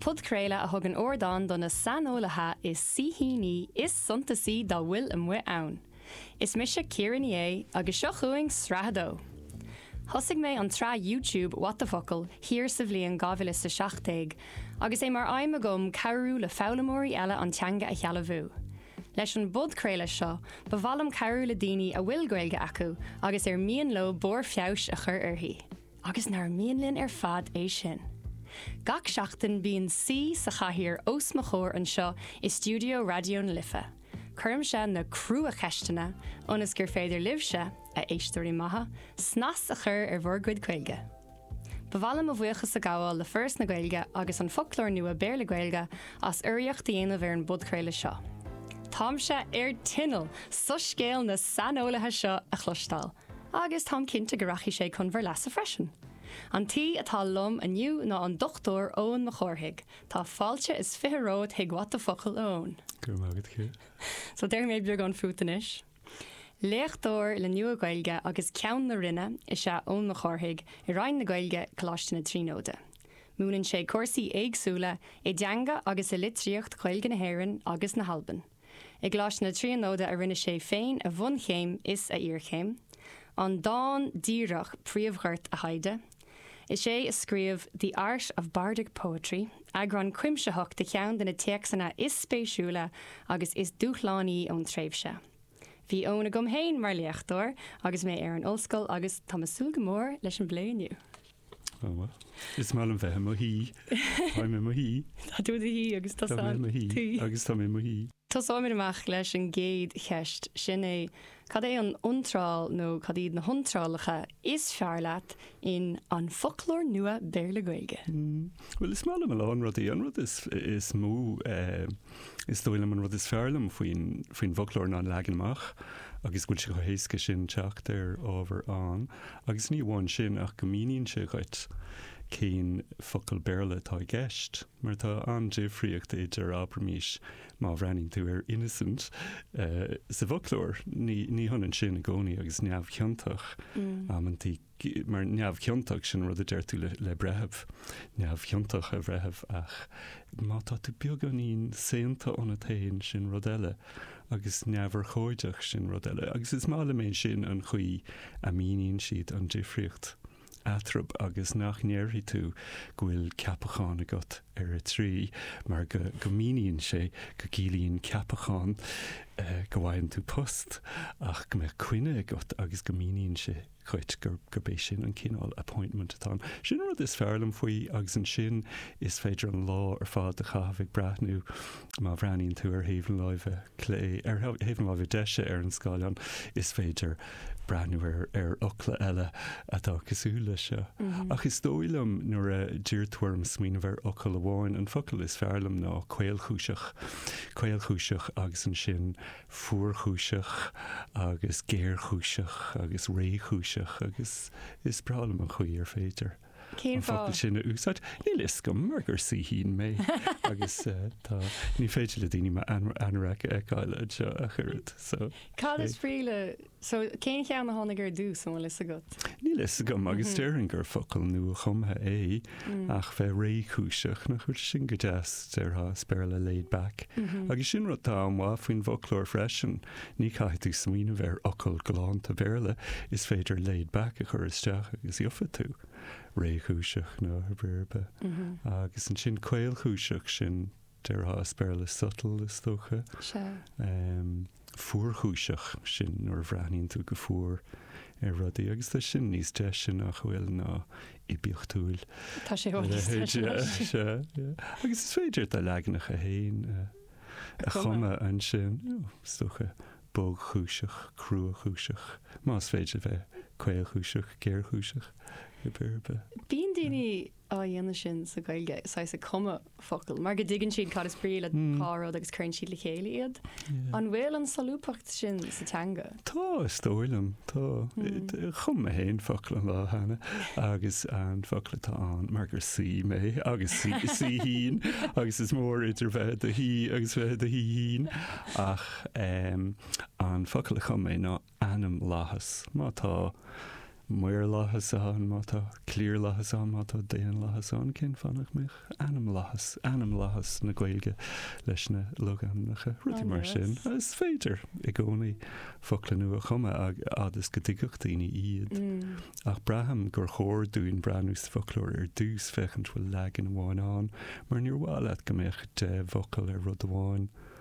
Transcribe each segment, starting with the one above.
Podchraoladh a thugann ardán do na saineolaithe is saoithíní is suntasaí dá bhfuil amuigh ann. Is mise Ciara Ní É agus seo chugainn Sraith a Dó! Thosaigh mé an tsraith YouTube What the Focal thiar sa bhliain 2017 agus é mar aidhm agam cabhrú le foghlaimeoirí eile an teanga a shealbhú. Leis an bpodchraoladh seo, ba mhaith liom cabhrú le daoine a bhfuil Gaeilge acu agus ar mian leo barr feabhais a chur uirthi. Agus nár mhian linn ar fad é sin. Gach seachtain bíonn saoi sa chathaoir os mo chomhair anseo i stiúideo Raidió na Life. Cuirimse na crua-cheisteanna, ionas gur féidir libhse, a éisteoirí maithe, snas a chur ar bhur gcuid Gaeilge. Ba mhaith liom mo bhuíochas a ghabháil le Foras na Gaeilge agus An Foclóir Nua Béarla-Gaeilge as urraíocht a dhéanamh ar an bpodchraoladh seo. Táimse ar tinneall soiscéal na saineolaithe seo a chloisteáil! Agus táim cinnte go rachaidh sé chun bhur leasa freisin. An t-aoi atá liom inniu ná an Dr. Eoin Mac Cárthaigh. Tá fáilte is fiche romhat chuig What the Focal, a Eoin. Go raibh maith agat, Ciara. So déarfaidh mé beagán fút anois. Léachtóir le Nua-Ghaeilge agus Ceann na Roinne is ea Eoin Mac Cárthaigh i Roinn na Gaeilge, Coláiste na Tríonóide. Múineann sé cúrsaí éagsúla i dteanga agus i litríocht Ghaeilge na hÉireann agus na hAlban. I gColáiste na Tríonóide a rinne sé féin a bhunchéim is a iarchéim, an dán díreach príomhghort a thaighde. Is é a scríobh The Art of Bardic Poetry, eagrán cuimsitheach de cheann de na téacsanna is spéisiúla agus is dúshlánaí ón tréimhse. Bhí Eoin agam féin mar léachtóir agus mé ar an ollscoil agus tá mé ag súil go mór leis an bplé inniu. Oh well. Is maith liom bheith i mo shuí. Táim i mo shuí. Tá tú i do shuí agus tá Táim i mo shuí Tuí. agus táim i mo shuí. Tosóimid amach leis an gcéad cheist, sin é, cad é an iontráil nó cad iad na hiontrálacha is fearr leat in An Foclóir Nua Béarla-Gaeilge? Bhuel, is maith liom a lán rudaí. An rud is mó Is dóigh liom an rud is fearr liom faoin, faoin bhfoclóir ná an leagan amach agus go bhfuil sé chomh héasca sin teacht ar ábhar ann agus ní amháin sin ach go míníonn sé dhuit cén focal Béarla atá i gceist mar tá an-difríocht idir, abraimís, má bhreathnaíonn tú ar innocent eh, sa bhfoclóir, ní, ní hionann sin i gcónaí agus neamhchiontach, amantaí. mar neamhchiontach, sin an rud a deir tú le breitheamh, neamhchiontach a bhreitheamh, ach má tá tú beagáinín, saonta ionat féin, sin rud eile, agus neamhurchóideach, sin rud eile. Agus is maith liom é sin an chaoi a míníonn siad an difríocht eatarthu agus nach ndéarfaidh tú go bhfuil ceapachán agat ar a 3, mar go míníonn sé go gciallaíonn ceapachán go bhfaigheann tú post ach go mbeadh coinne agat agus go míníonn sé Chreid gurb é sin an cineál appointment atá ann. Sin an rud is fearr liom faoi agus ansin is féidir an lá ar fad a chaitheamh ag breathnú, má bhreathnaíonn tú ar thaobh na láimhe clé, ar thaobh na láimhe deise ar an scáileán, is féidir breathnú ar ar fhocla eile atá cosúil leis seo. Ach is dóigh liom nuair a d'iarr tú orm smaoineamh ar fhocal amháin, an focal is fearr liom ná caolchúiseach. Caolchúiseach agus ansin. fuarchúiseach agus géarchúiseach agus réchúiseach agus is breá liom an chaoi ar féidir Cén fáth? an focal sin a úsáid. Níl a fhios agam mar gur saoithín mé agus eh, tá, ní féidir le daoine m'anorac a fheiceáil anseo ach oiread so. Cad is brí le So, cén cheann a tháinig ar dtús, an bhfuil fhios agat? Níl fhios agam, agus déarfainn gur focal nua-chumtha é, ach bheith réchúiseach, nach bhfuil sin go deas, déarfá, is Béarla laid back. Agus sin rud atá an-mhaith faoin bhfoclóir freisin, ní chaithfidh tú smaoineamh ar fhocal galánta Béarla, is féidir laid back a chur isteach agus gheobhaidh tú, réchúiseach, nó, ar aon bhealach ar bith. Agus ansin caolchúiseach, sin Déarfá as Béarla subtle, is dócha. Sea. Fuarchúiseach, sin nuair a bhreathnaíonn tú go fuar ar rudaí, agus tá sin níos deise, nach bhfuil, ná oibiachtúil. Tá sé a leithéid de. Sea. Agus is féidir do leaganacha féin a chumadh ansin, is dócha, bogchúiseach, cruachúiseach, más féidir a bheith caolchúiseach, géarchúiseach, rud ar bith. Bíonn daoine á dhéanamh sin sa Ghaeilge, saghas ag cumadh focal, mar go dtuigeann siad cad is brí le dhá rud agus cuireann siad le chéile iad. An bhfuil an solúbthacht sin sa teanga? Tá, is dóigh liom. Tá. Chum mé féin focal an lá cheana agus an focal atá ann, mar gur saoi mé agus saoithín agus is mór idir bheith i do shaoi agus bheith i do shaoithín, ach an focal a chum mé ná ainmlathas, má tá maorlathas ann, má tá cliarlathas ann, má tá daonlathas ann, cén fáth nach mbeadh ainmlathas, ainmlathas na Gaeilge leis na logainmneacha, rudaí mar sin. Is féidir i gcónaí focla nua a chumadh fhad is go dtuigfeadh daoine iad. Ach braithim gur chóir dúinn breathnú sa bhfoclóir ar dtús, féachaint bhfuil leagan amháin ann, mar níor mhaith leat go mbeadh deich bhfocal ar rud amháin.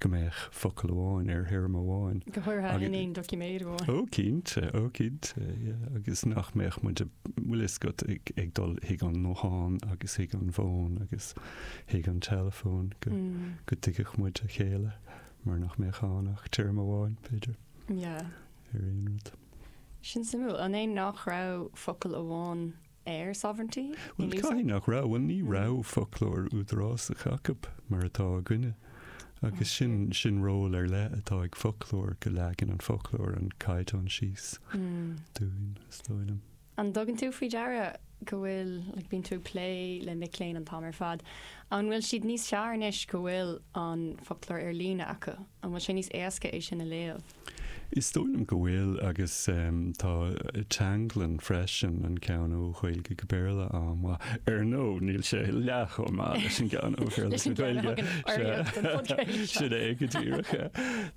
go mbeadh focal amháin ar théarma amháin. Go háirithe in aon doiciméad amháin. Ó cinnte, ó cinnte, yeah, agus nach mbeadh muid ag, bhfuil a fhios agat ag dul chuig an nguthán agus chuig an bhfón agus chuig an teileafón go, go dtuigfeadh muid a chéile mar nach mbeadh ann ach téarma amháin, b'fhéidir, ar aon rud. Sin suimiúil, an é nach raibh focal amháin. ar sovereignty in Bhuel, caithfidh nach raibh. Bhuel, ní raibh foclóir údarásach acu mar atá againne. Agus sin, sin ról ar leith atá ag foclóir, go leagann an foclóir an caighdeán síos dúinn, is dóigh liom. An dtugann tú faoi deara go bhfuil, like, bíonn tú ag plé le mic léinn an t-am ar fad, an bhfuil siad níos fearr anois go bhfuil an foclóir ar líne acu? An bhfuil sé níos éasca é sin a léamh? Is dóigh liom go bhfuil agus tá teanglann freisin an ceann ó Ghaeilge go Béarla ann, ach, ar ndóigh, níl sé leath chomh maith leis an gceann ó Bhéarla go Gaeilge, sin é go díreach é.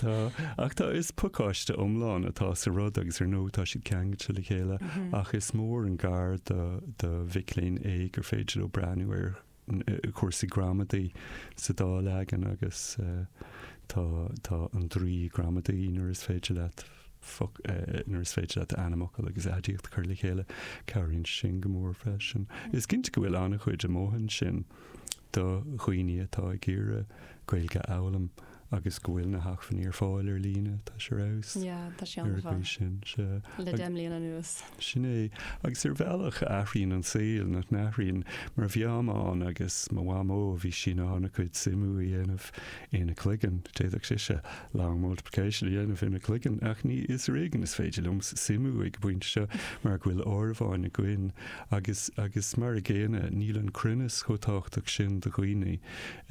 Tá, ach tá, is pacáiste iomlán atá sa rud agus ar ndóigh tá siad ceangailte le chéile ach is mór an gar do mhic léinn é gur féidir leo breathnú ar cúrsaí gramadaí sa dá leagan agus tá, tá an draoi gramadaí nuair is féidir leat nuair is féidir leat ainmfhocal agus aidiacht a chur le chéile. Cabhraíonn sin go mór freisin. Is cinnte go bhfuil an-chuid amuigh ansin do dhaoine atá ag iarraidh Gaeilge a fhoghlaim. Agus go bhfuil na hacmhainní ar fáil ar líne, tá sé ar fheabhas. Yeah, tá sé ar fheabhas. Ar an gcaoi sin. Le deich mbliana anuas. Sin é. Agus ar bhealach athraíonn an saol, nach n-athraíonn? Mar, I mean, agus mo mhamó, bhí sí in ann a cuid suimiú a dhéanamh ina cloigeann. D'fhéadfadh sise long multiplication a dhéanamh ina cloigeann, ach anois ar éigean is féidir liomsa suimiú ag an bpointe seo, mar go bhfuil áireamháin againn. Agus, agus mar a gcéanna, níl an cruinneas chomh tábhachtach sin do dhaoine.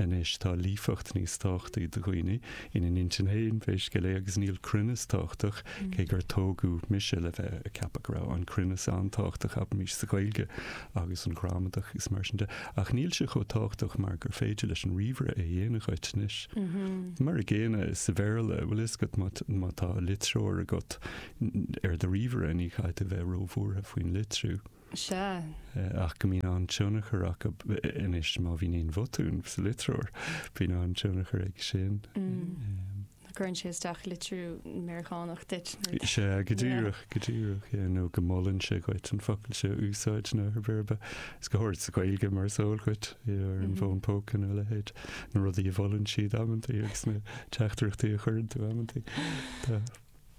Anois tá líofacht níos tábhachtaí do dhaoine, ina n-intinn féin, pé scéal é, agus níl cruinneas tábhachtach, cé gur tógadh mise le bheith ag ceapadh go raibh an cruinneas an-tábhachtach, abraimis, sa Ghaeilge agus an ghramadach agus mar sin de, ach níl sé chomh tábhachtach mar gur féidir leis an ríomhaire é a dhéanamh dhuit anois. Mar a gcéanna sa Bhéarla, bhfuil a fhios agat, má tá litreoir agat ar do ríomhaire, ní chaithfidh tú bheith róbhuartha faoin litriú. Sea. ach go mbíonn an-tionchar aige anois má bhíonn aon bhotún sa litreoir, bíonn an-tionchar aige sin. Cuireann sé isteach litriú Meiriceánach duit. Sea, go díreach, go díreach, yeah, nó go molann sé dhuit an focal seo a úsáid nó ar bith ar bith. Is go háirid sa Ghaeilge mar is eol dhuit, yeah, ar an bhfón póca nó a leithéid, na rudaí a mholann siad amantaí agus na teachtaireachtaí a chuireann tú amantaí.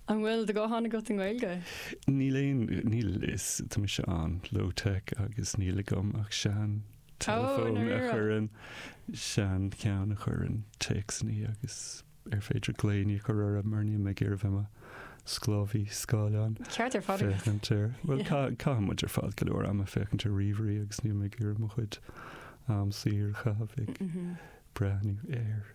An bhfuil do ghuthán agat i nGaeilge? Níl aon, níl, is tá mise an-low tech agus níl agam ach seanteileafón a chuireann, seancheann a chuireann téacsannaí agus ar féidir glaoiní a chur orm mar níl mé ag iarraidh bheith i mo sclábhaí scáileáin. Ceart ar fad agat. Féachaint ar, bhuel caitheann muid ar fad go leor ama ag féachaint ar ríomhairí agus níl mé ag iarraidh mo chuid am saor a chaitheamh ag breathnú air.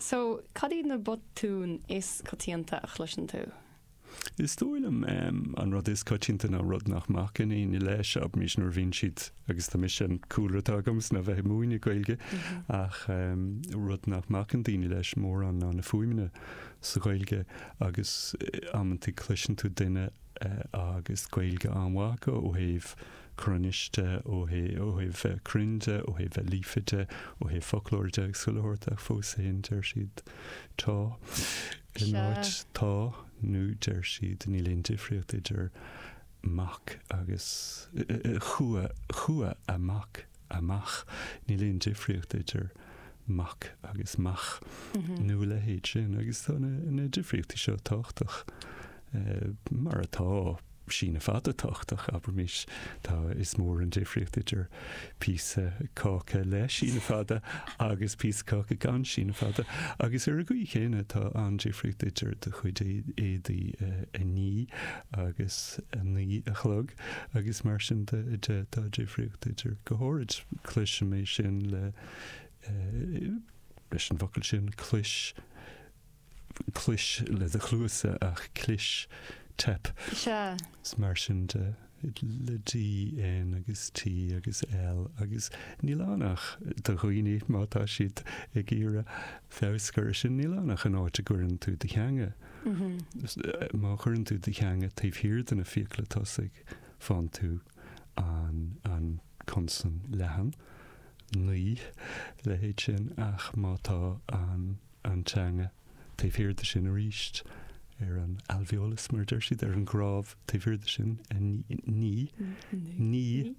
So, cad iad na botúin is coitianta a chloiseann tú? Is dóigh liom an rud is coitianta ná rud nach mbacann daoine leis arís nuair a bhíonn siad, agus tá mise an cúlra atá agam is ná bheith ag múineadh Gaeilge, ach rud nach mbacann daoine leis mórán ná na fuaimeanna sa Ghaeilge agus amantaí cloiseann tú duine agus Gaeilge an-mhaith acu ó thaobh cruinnis de ó thaobh cruinn de, ó thaobh líofa de, ó thaobh foclóra de agus chuile shórt ach fós féin, deir siad, tá, in áit tá nó deir siad, níl aon difríocht idir mac agus, chua, chuaigh amach. amach. Níl aon difríocht idir mac agus mach nó a leithéid sin agus tá na difríochtaí seo tábhachtach. Mar atá síneadh fada tábhachtach, abraimís, tá is mór an difríocht idir píosa cáca le síneadh fada agus píosa caca gan síneadh fada. Agus ar an gcaoi chéanna tá an-difríocht idir do chuid éadaí a ní agus a naoi a chlog. Agus mar sin de, tá difríocht idir, go háirid, cloisim é sin le, leis an bhfocal sin, clois, clois le do chluasa ach clis, teip. Sea. Is mar sin de, le D, N agus T agus L agus níl ann ach do dhaoine, má tá siad ag iarraidh feabhas a chur ar sin, níl ann ach an áit a gcuireann tú do theanga. Má chuireann tú do theanga taobh thiar de na fiacla tosaigh, faigheann tú an consan leathan, naoi, leithéid sin, ach má tá an teanga taobh thiar de sin arís, ar an alveolus, mar a deir siad, ar an gcnámh taobh thiar de sin, ní, ní, ní,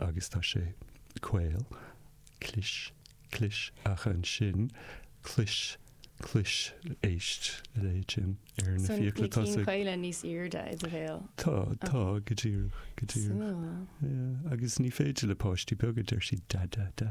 agus tá sé caol, clis, clis, ach ansin, clois, clois, éist leis sin ar na fiacla tosaigh. So na cinn caola níos airde i do bhéal? Tá, tá, go díreach, go díreach. Súil. Yeah, agus ní féidir le páistí beaga, deir siad, da, da, da.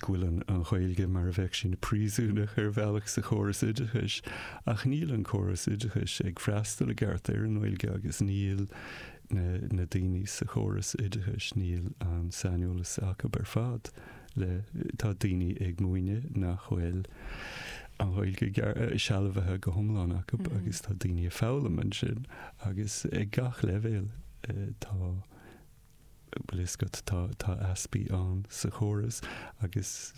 go bhfuil an Ghaeilge mar a bheadh sí ina príosúnach ar bhealach sa chóras oideachais ach níl an córas oideachais ag freastal i gceart ar an nGaeilge agus níl na daoine sa chóras oideachais, níl an saineolas acu ar fad le, tá daoine ag múineadh nach bhfuil an Ghaeilge sealbhaithe go hiomlán acu agus tá daoine ag foghlaim ansin agus ag gach leibhéal tá bhfuil fhios agat, tá easpaí ann sa chóras agus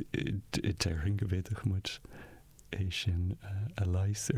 déarfainn go bhféadfadh muid é sin a leigheas ar.